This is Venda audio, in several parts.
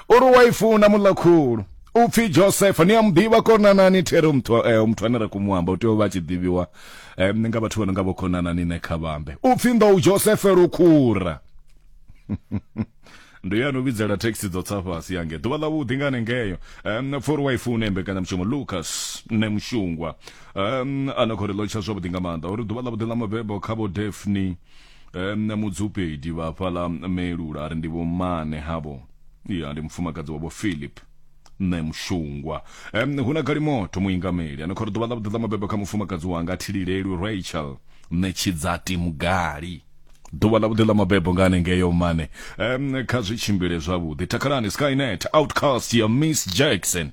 uri wa i funa muḽa khulu upfhi josefa ni a mu ḓivha konanani there muthu eh, muthu ane ra khou mu amba u tea u vha a tshi ḓivhiwa eh, nga vhathu vha no nga vho khonanani ne kha vhambe upfhi nḓou josefe lukhura ndo ya no vhidzela thekhisi dzo tsa fhasi yange ḓuvha ḽa vhuḓi nga hanengeyo um, fori wa i fune mbekanyamushumo lucas ne mushungwa um, a na khou ri ḽotsha zwavhuḓi nga maanḓa uri ḓuvha ḽa vhuḓi ḽa mabebo kha vho defni um mudzupedi vha fhaḽa melula ri ndi vho mmane havho ya ndi mufumakadzi wavho philip nṋe mushungwa um hu na galimoto muingameli ano khori ḓuvha ḽa vhuḓi ḽa mabebo kha mufumakadzi wanga thililelwi rachel nṋe tshidzati mugali ḓuvha ḽa vhuḓi ḽa mabebo nga hanengeyo mmane um kha zwi tshimbile zwavhuḓi takhalani skynet outcast ya miss jackson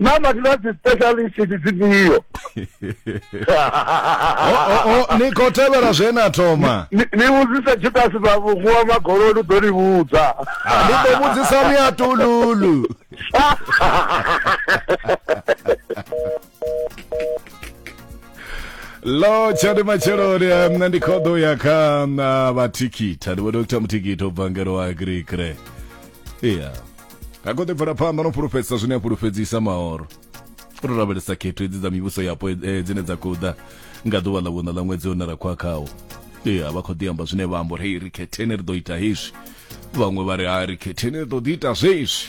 naa vhathu vha dzi specialist ndi dzifhio o, o, ni khou tevhela zwe na thoma Ni- ni vhudzise judasi vha vhuwa magoloni u ḓo ni vhudza ndi ḓo vhudzisa miatululu lo tshani matsheloni nṋe ndi khoḓo ya kha na vhathikita ndi vhona u kutha muthikita u bva ngelo wa agrikre iya ha kho ḓi bvela phanḓa no fhulufhedzisa zwine a fhulufhedzisa mahoro u to lavhelesa khetho hedzi dza mivhuso yapo eh, dzine dza khou ḓa nga ḓuvha ḽa vhuṋa ḽa ṅwedzi une ra khwa khawo iya vha khou ḓi amba zwine vha amba uri hei ri khetheni ri ḓo ita hezwi vhaṅwe vha ri ha ri khetheni ri ḓo ḓi ita zwezwi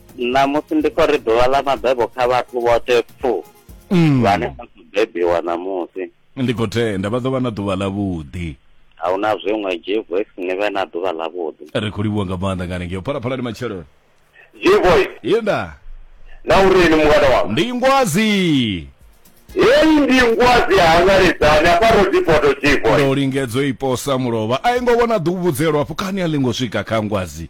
ṋamusi ndi khou ri ḓuvha ḽa mabebo kha vhathu vhoṱhe pfu mm. vhane vha khou bebiwa ṋamusi ndi khou tenda vha ḓo vha na ḓuvha ḽavhuḓi a hu na zwiṅwe gvoice ni vhe na ḓuvha ḽavhuḓi ri khou livhuwa nga maanḓa nga hanengeo phalaphala ndi matshelo gvoice yenda na uri ni mungana wa ndi ngwazi heyi ndi ngwazi hangaledzani afha rodipoto gvoice ndo lingedzwa iposa mulovha a i ngo vhona ḓuvhudzelwa afho kani a ḽi ngo swika kha ngwazi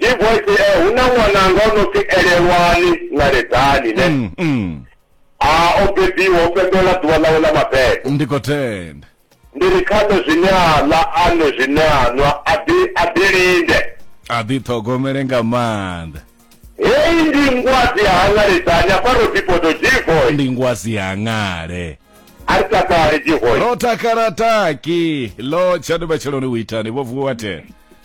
divoice eh, hu na ṅwananga o no pfi elelwani ṋaledani ne Mm, mm. a o bebiwa o fhembela ḓuvha ḽawe ḽa mabebo ndi khou tenda ndi ri kha nṋe zwine a ḽa a nwe zwine a nwa a ḓi a ḓi linde a ḓi ṱhogomele nga maanḓa heyi ndi ngwazi ya haṋaledani afha ro bipoto divoice ndi ngwazi ya ṅale a ri takale divoice ro takala taki lo tshandu matsheloni u itani vho vuwa tena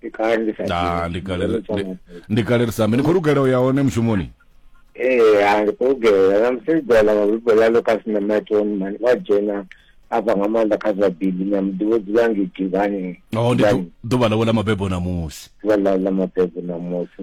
ndi kale ndi sa Ah, ndi kale ndi- ndi kale ri sambe ni khou lugela u ya hone mushumoni ee ha ndi khou lugela na musi dala mabibbo ḽa lucas na matoni mani vha dzhena afha nga maanḓa kha zwa bili na muḓivho dzula ngidivhani oh ndi ḓu- ḓuvha ḽawe ḽa mabebo ṋamusi ḓuvha ḽa ḽa mabebo ṋamusi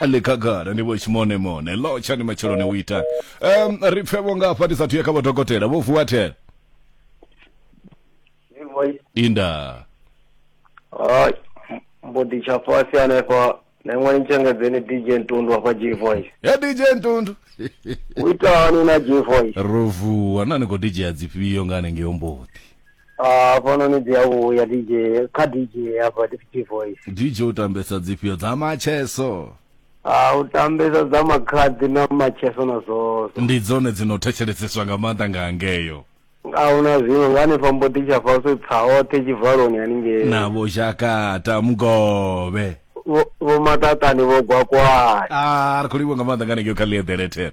le khagala ni vho tshimonemone lotsha ni matsheloni u ita um ri pfe vho ngafha ndi sathu ya kha vhodokotela vho vuwa thela inda Hai, mbo ḓi tsha fhasi hanefha na iṅwe ni tshengedzeni dj ntundu hafha g voice ya dj ntundu u ita hani na g voice ro vuwa na ni khou dijea dzifhio nga hanengei omboḓi hafhanoni dzi a vhuya dj kha dj hafha dj voice dj u tambesa dzifhio dza macheso Ah, u tambesa dza makhadzi na macheso na zwozo ndi dzone dzi no thetsheleseswa nga maanḓa nga hangeyo ahuna zwiṅwe nga hanefha mbodi tsha faso pfa oṱhe tshivaloni haningei navho zhakata mugovhe Vho- vho matatani vho gwakwani a ri khou livha nga maanḓa nga hanengeo kha ḽieḓelethere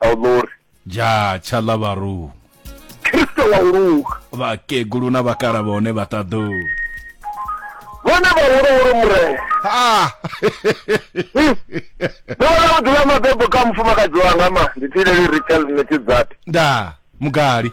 a u ḽori ja tshaḽa vharu kristo wa u luga vhakegulu na vhakala vhone vha ṱaḓu vhone vhahuluhulu murena ha ndo vhona u dzula mabebo kha mufumakadzi wanga ma ndi thileli rachel netidzati nda mugali